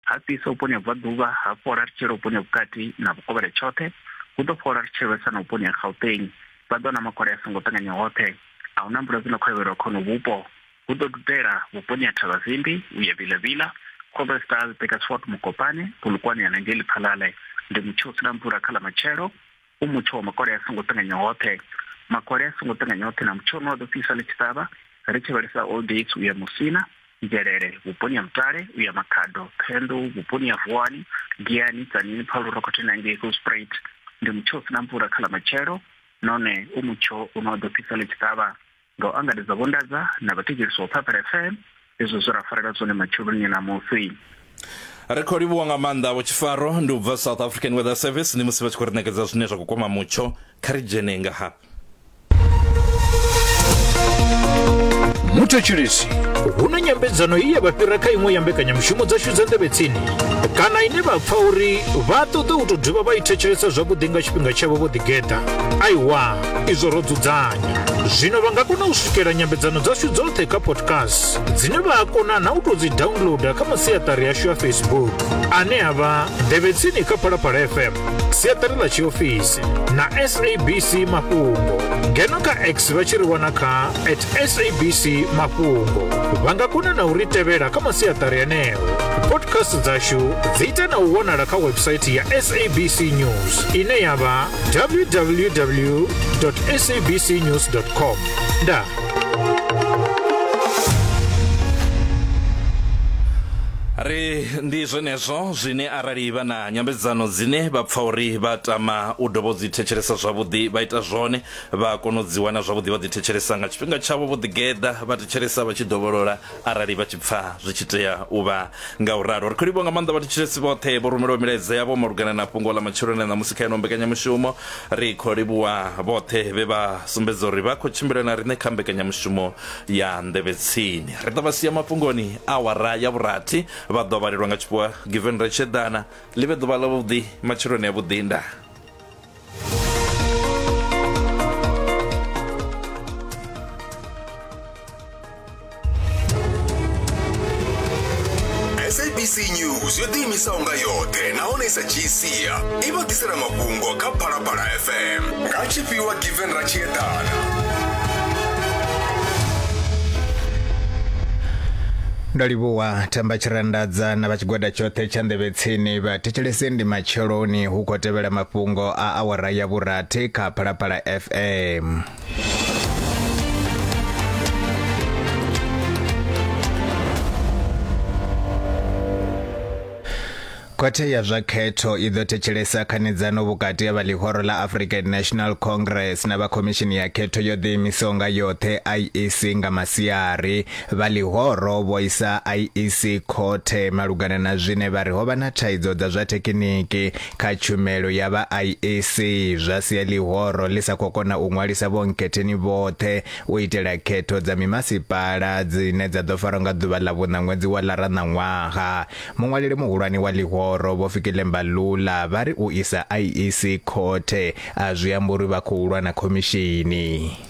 Ha fhisa vhuponi ha Bvaḓuvha, ha fhola ri tshi yela vhuponi ha Vhukati na Vhukovhela tshoṱhe. Hu ḓo fhola ri tshi lwesa na vhuponi ha Gauteng. Vha ḓo na makole a songo ṱanganya hoṱhe. A hu na mvula dzi no khovhelwa kha honovhu vhupo. Hu ḓo dudela vhuponi ha Thavhazimbi u ya Vilavila, Groblersdal, Burgersfort, Mokopane, Polokwane ya na ngei Lephalale. Ndi mutsho u si na mvula kha ḽa matshelo. u mutsho wa makole a songo ṱanganya hoṱhe makole a songo ṱanganya hoṱhe na mutsho une wa ḓo fhisa ḽi tshi ṱavha ri tshi vhalisa old dates u ya musina nzhelele vhuponi ha mutale u ya makhado phenḓu vhuponi ha vuwani giani tsanini phalu rokhotheni hangei golsprait ndi mutsho u sina mvula kha ḽa matshelo nahone u mutsho une wa ḓo fhisa ḽi tshi ṱavha nga u angaredza Vho Ndadza na vhathetshelesi wa Purple FM izwo zwe ra farela zwone matsheloni na musi. ri khou livhuwa nga maanḓa vho tshifaro ndi u bva south african weather service ndi musi vha tshi khou ri ṋekedza zwine zwa khou kwama mutsho kha ri dzhene nga hafha muthetshelesi hu na nyambedzano i ya vha fhira kha iṅwe ya mbekanyamushumo dzashu dza nḓevhe tsini kana ine vha pfa uri vha ṱoḓa u tou dovha vha i thetshelesa zwavhuḓi nga tshifhinga tshavho vho ḓigeḓa aiwa izwo ro dzudzanya zwino vha nga kona u swikela nyambedzano dzashu dzoṱhe kha podcast dzine vha a kona na u tou dzi downloada kha masiaṱari yashu ya facebook ane a vha nḓevhetsini kha phalaphala fm siaṱari ḽa tshiofisi na sabc mafhungo ngeno kha x vha tshi ri wana kha at sabc mafhungo vha nga kona na u ri tevhela kha masiaṱari aneo podcast dzashu dzi ita na u wanala kha website ya sabc news ine ya vha www.sabcnews.com ndaa ri ndi zwenezwo zwine arali vha na nyambedzano dzine vha pfa uri vha tama u dovha u dzi thetshelesa zwavhuḓi vha ita zwone vha kona u dzi wana zwavhuḓi vha dzi thetshelesa nga tshifhinga tshavho vho ḓigeḓa vha thetshelesa vha tshi dovholola arali vha tshi pfa zwi tshi tea u vha nga u ralo ri khou livho nga maanḓa vhathetshelesi vhoṱhe vho rumelaho milaedza yavho malugana na fhungo ḽa matshiloni na musi kha yeno mbekanyamushumo ri khou livhuwa vhoṱhe vhe vha sumbedza uri vha khou tshimbila na riṋe kha mbekanyamushumo ya nḓevhe tsini ri ḓo vha sia mafhungoni awara ya vhurathi vha ḓo vhalelwa nga tshifhiwa given ri tshi eḓana ḽi vhe ḓuvha ḽavhuḓi matshiloni avhuḓi ndaa sabc news yo ḓiimisaho nga yoṱhe nahone i sa dzhii sia i vha ḓisela mafhungo kha phalaphala fm nga tshifhiwa given ra tshi eḓana ndo livhuwa themba tshirandadza na vha tshigwada tshoṱhe tsha nḓevhe Tsini vhathetshelesi ndi matsheloni hu khou tevhela mafhungo a awara ya vhurathi kha Phalaphala FM. khothe ya zwa khetho i ḓo thetshelesa khanedzano vhukati ha vha ḽihoro ḽa african national congress na vha khomishini ya khetho yo ḓiimisaho nga yoṱhe iec nga masiari Vha ḽihoro vho isa IEC khothe malugana na zwine vha ri ho vha na thaidzo dza zwa thekiniki kha tshumelo ya vha IEC zwa sia ḽihoro ḽi sa khou kona u ṅwalisa vhonkhetheni vhoṱhe u itela khetho dza mimasipala dzine dza ḓo farwa nga ḓuvha ḽa vhuṋa ṅwedzi wa ḽara ṋaṅwaha. Muṅwaleli muhulwane wa ḽihoro Vho Fikile Mbalula vha ri u isa IEC khothe a zwi ambi uri vha khou lwa na khomishini.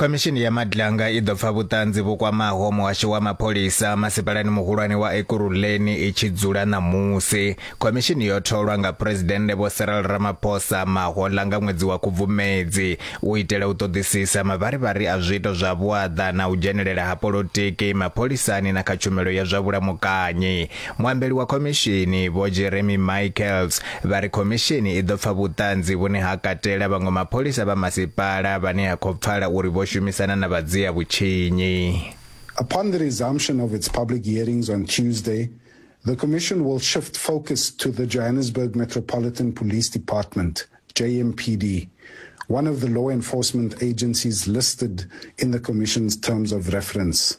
Khomishini ya Madlanga i ḓo pfa vhuṱanzi vhu kwamaho muhasho wa mapholisa masipalani muhulwane wa Ekurhuleni i tshi dzula ṋamusi. Khomishini yo tholwa nga Phresidennde Vho Cyril Ramaphosa mahoḽa nga ṅwedzi wa Khubvumedzi u itela u ṱoḓisisa mavharivhari a zwiito zwa vhuaḓa na u dzhenelela ha polotiki mapholisani na kha tshumelo ya zwa vhulamukanyi. Muambeli wa khomishini Vho Jeremy Michaels vha ri khomishini i ḓo pfa vhuṱanzi vhune ha katela vhaṅwe mapholisa vha masipala vhane ha khou pfala uri vho shumisana na vhadzia vhutshinyi. Upon the resumption of its public hearings on Tuesday, the Commission will shift focus to the Johannesburg Metropolitan Police Department, JMPD, one of the law enforcement agencies listed in the Commission's terms of reference.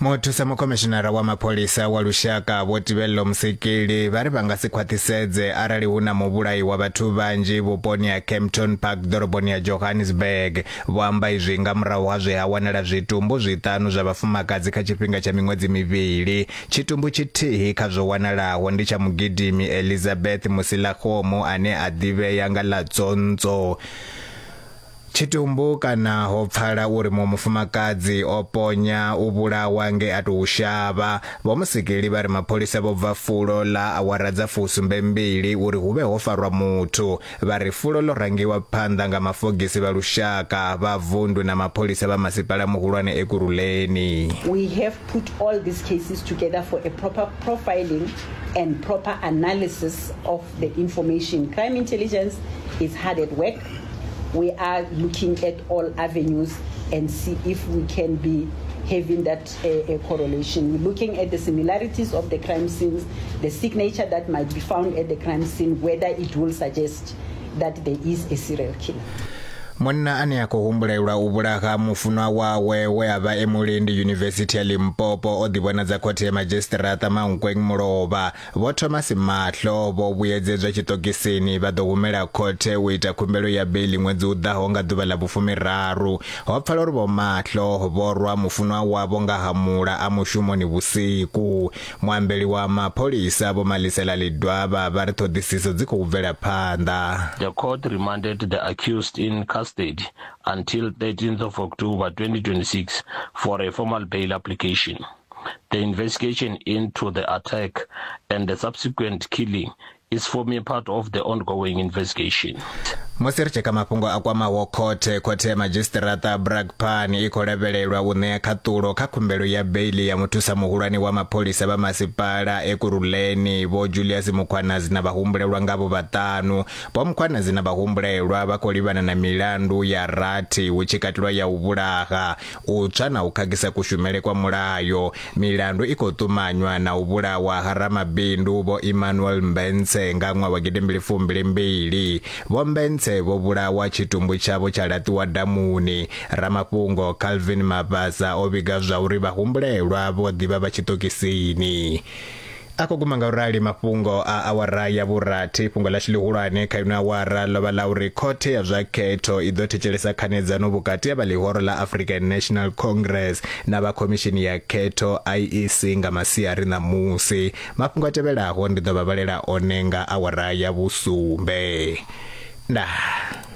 Muthusa mukhomishinara wa mapholisa wa lushaka Vho Tibello Musekeli vha ri vha nga si khwaṱhisedze arali hu na muvhulayi wa vhathu vhanzhi vhuponi ha Kempton Park ḓoroboni ya Johannesburg. Vho amba izwi nga murahu ha zwe ha wanala zwitumbu zwiṱanu zwa vhafumakadzi kha tshifhinga tsha miṅwedzi mivhili. Tshitumbu tshithihi kha zwo wanalaho ndi tsha mugidimi Elizabeth Musilakgomo ane a ḓivhea nga ḽa Tsontso. Tshitumbu kana ho pfala uri muṅwe mufumakadzi o ponya u vhulawa nge a tou shavha. Vho Musikili vha ri mapholisa vho bva fulo ḽa awara dza fusumbe mbili uri hu vhe ho farwa muthu. Vha ri fulo ḽo rangiwa phanḓa nga mafogisi vha lushaka, vha vundu na mapholisa vha masipala muhulwane Ekurhuleni. We have put all these cases together for a proper profiling and proper analysis of the information. Crime Intelligence is hard at work we are looking at all avenues and see if we can be having that uh, uh, correlation. We're looking at the similarities of the crime scenes, the signature that might be found at the crime scene, whether it will suggest that there is a serial killer. munna ane a khou humbulelwa u vhulaha mufunwa wawe we a vha e mulendi yunivesithi ya limpopo o ḓivhonadza khothe ya madzhisiṱiraṱa mankweng mulovha Vho Thomas Mahlo vho vhuyedzedzwa tshiṱokisini vha ḓo humela khothe u ita khumbelo ya beiḽi ṅwedzi u ḓaho nga ḓuvha ḽa vhufumiraru. Ho pfala uri Vho Mahlo vho rwa mufunwa wavho nga hamula a mushumoni vhusiku. Muambeli wa mapholisa Vho Malisela Ledwaba vha ri ṱhoḓisiso dzi khou bvela phanḓa. The court remanded the accused in custody until 13th of October 2026 for a formal bail application. The investigation into the attack and the subsequent killing is forming part of the ongoing investigation. musi ri tshi ka mafhungo a kwamaho khothe khothe ya madzhisiṱiraṱa bragpan i khou lavhelelwa u ṋea khaṱulo kha khumbelo ya beili ya muthusa muhulwane wa mapholisa vha masipala ekuruleni vho julius mukhwanazi na vhahumbulelwa ngavho vhaṱanu vho mukhwanazi na vhahumbulelwa vha khou livhana na milandu ya rathi hu tshi katelwa ya u vhulaha u tswa na u khakhisa kushumele kwa mulayo, milandu i khou ṱumanywa na u vhulawa ha ramabindu Vho Emmanuel Mbentse nga ṅwaha wa gidi mbili fumbili mbili. Vho Mbentse vho vhulawa tshitumbu tshavho tsha laṱiwa damuni. Ramafhungo Calvin Mabasa o vhiga zwauri vhahumbulelwa vho ḓi vha vha tshiṱokisini. a khou guma nga u rali mafhungo a awara ya vhurathi fhungo ḽashu ḽihulwane kha ino awara ḽo vha ḽa uri khothe ya zwa khetho i ḓo thetshelesa khanedzano vhukati ha vha ḽihoro ḽa african national congress na vha khomishini ya khetho iec nga masiari ṋamusi mafhungo a tevhelaho ndi ḓo vha vhalela one nga awara ya vhusumbe ndaa